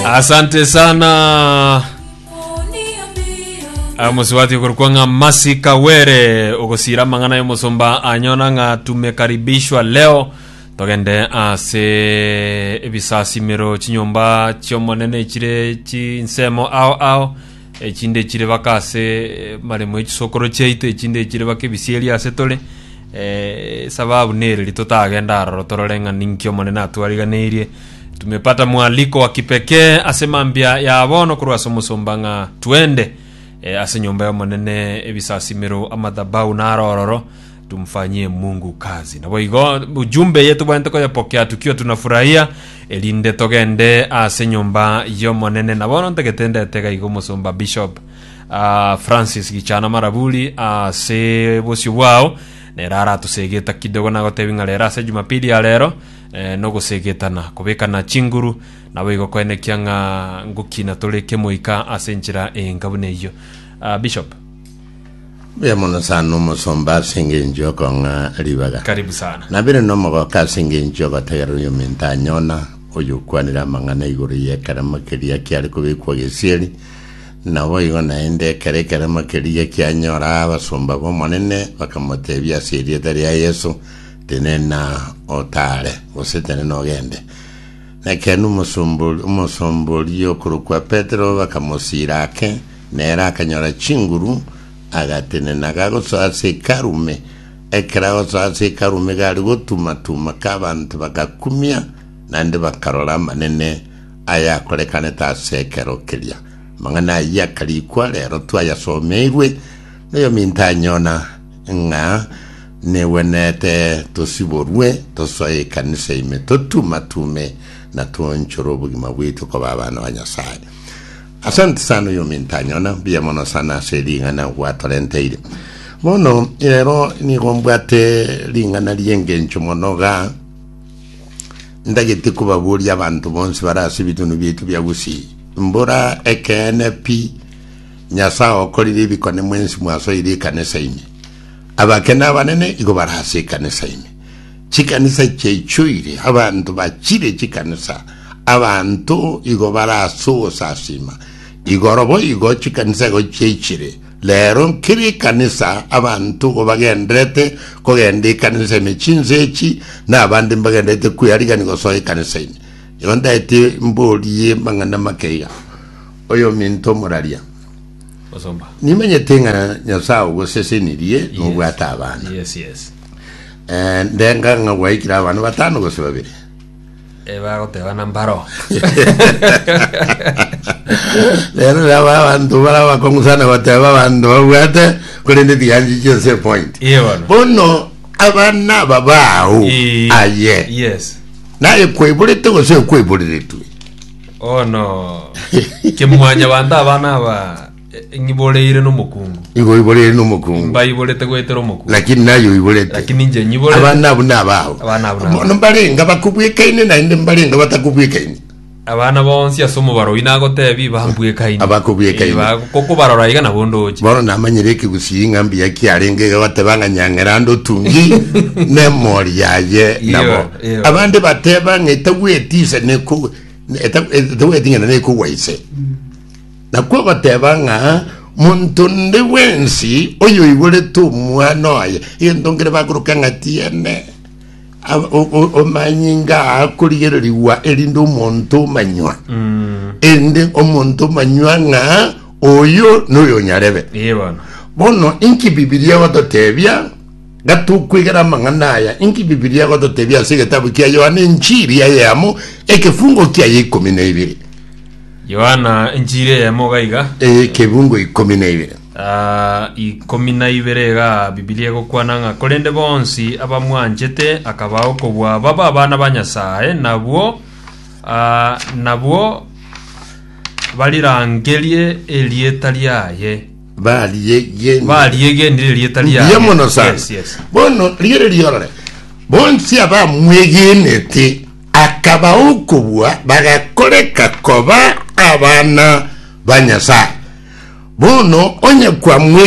asante sana amusibati okorukwa ng'a masi kawere ogosira amang'ana y'omosomba anyona ng'a tumekaribishwa leo togende ase ebisasimero chinyomba chi'omonene chire chinsemo ao ao echinde chire baka ase eh, maremo echisokoro chiaito echinde chire baka ebisieri ase tore eh, sababu nereri totagenda aroro torore ng'a ninki omonene atwariganeirie Tumepata mwaliko wa kipekee ase mambia ya bono korwa ase omosomba ng'a twende eh, ase nyomba y'Omonene, ebisasimero, amadhabahu na arororo, tumfanyie Mungu kazi. Naboigo ujumbe eye tobwenerete koyepokea tukio tunafurahia, erinde togende ase nyomba y'Omonene. Na bono ntagete ndete iga iga omosomba Bishop ah, Francis Gichana Maraburi ase bosio bwao nere aratusegeta kidogo nagotebi ng'a rero ase Jumapili ya rero nogoseegetana, kobekana chinguru, naboigo koenekia ng'a ngoki natore kemoika ase enchera enka buna eyio. Ah, Bishop. Mbuya mono sana omosomba ase engencho y'okong'a ribaga. Karibu sana. Nabire nomogoka ase engencho y'ogotegerera oyominto anyona, oyokwanire amang'ana igoro y'ekeremo keria kiare kobekwa gesieri. Naboigo naende ekero ekeremo keria kianyora abasomba b'Omonene, bakamoteebia ase erieta ria Yeso, Tenena otaare, gose tenena ogende. Nekeene omosombori omosombori okorokwa Petero bakamosiira ake, nere akanyora chinguru, agatenena gagosoa ase hekalu ime. Ekero agosoa ase hekalu ime gari gotuma-tuma ka abanto bagakumia, naende bakarora amanene ayakorekanete ase ekero keria. Amang'ana ayio akarikwa rero twayasomeirwe noyominto anyona ng'a Negwenerete tosiborwe, tosoe ekanisa ime, totume-tume, na toonchore obogima bwaito koba abana ba Nyasae. Asante sana oyo ominto anyona, mbuya mono sana ase ring'ana gwatorenteire. Bono rero nigo mbwate ring'ana ri'engencho mono ga ndagete kobaboria abanto bonsi bare ase ebitunwa biaito bia Gusii. Mbora ekeene pi, Nyasae okorire ebikone mwensi mwasoire ekanisa ime. Abakene abanene igo bare ase ekanisa ime, chikanisa chiaichoire abanto bachire chikanisa, abanto igo bare ase ogosasiima. Igoro boigo chikanisa igo chiaichire. Rero nkere ekanisa abanto igo bagenderete kogenda ekanisa ime, chinse echi, na abande mbagenderete kwearigania gosoa ekanisa ime. Igo ndaete mborie mang'ana make iga, Oyominto omoraria, Nimenyete ng'a Nyasae ogosesenirie nobwate abana. Ndenga ng'a gwaikire abana batano gose babere. Bagotebana mbaro. Rero nabo abanto bare abakong'u sana goteba abanto babwate, korende tiganchi chi'ense point. Bono abana aba bao aye, naye kwaiborete gose okwaiboreretwe? Oh no. Kimwanya banda abana aba e- ng'iboreire nomokungu. igo oiborere nomokungu Mbaiborete goetera omokungu. lakini naye oiborete Lakini inche nyiborete. abana abu nabao Abana abu nabao. mono mbarenga bakobwekaine naende mbarenga batakobwekaine Abana bonsi ase omobaro oyi nagotebia bambwekaini. Abakobwekaini. Kokobarora iga nabo ndoche. bono namanyire ekegusii ng'a mbuya kiarenge iga bateba ng'a nyang'era ande otungi nemori yaye nabo Iyo, iyo. abande bateba ng'a etagweti ise neko etagweting'ana nekogwa ise, nakwo ogoteba ng'a monto onde bwensi oyoigorete omwana oye, egento nkere bakoroka ng'a tiene omanyinga akorigererigwa erinde omonto omanywa mm. erinde omonto omanywa ng'a oyo noyo nyarebe bono inki bibilia egototebia Gatokwegera amang'ana aya, inki Bibilia egototebia ase egetabu kia Yohana Enchiri eyemo, ekefungo kiaye ikomi na ibere? Yohana Enchiri eyemo iga iga, Ekefungo ikomi na ibere. ah, ikomi na ibere iga Bibilia egokwana ng'a korende bonsi abamwanchete akabaa okobua babe abana ba Nyasae, nabwo ah, nabwo barirangerie erieta riaye. Bariegenire. bariegenire erieta Mbuya riaye mono sana yes, yes. bono riere riorore bonsi abamwegenete akaba okobua bagakoreka koba abana ba nyasaye bono onye kwamwegenire